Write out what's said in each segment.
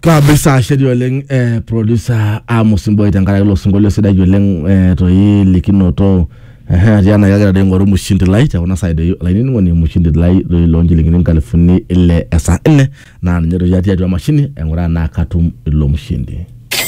kabisa ashedi oleng eh, producer Amos Mboy tenkaraki ilo sinkolio sidai oleng eh, toi likinoto Ehe, atii ena kagira doi aing'oru mushindi lai te kuna saai doi olainining'oni mushindi lai doi loo nchilingini nkalifuni ile esaa nne naa ninye doi atii atua emashini aing'uraa naa katum ilo mushindi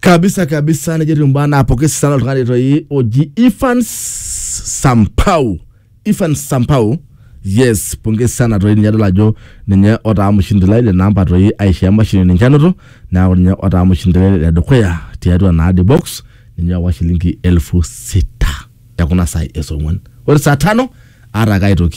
kabisa kabisa nejo etiu mbaa naapoki sana oltung'ani toi oji Ivan Sampau Ivan Sampau yes pongezi sana toi ninye adol ajo ninye otaa mshindi lai le namba toi aisho emashini ninche anoto neaku ninye otaa mshindi lai le dukuya tiatua naa the box ninye owa shilingi elfu sita ekuna saai esong'uan ore saa tano aata ake aitoki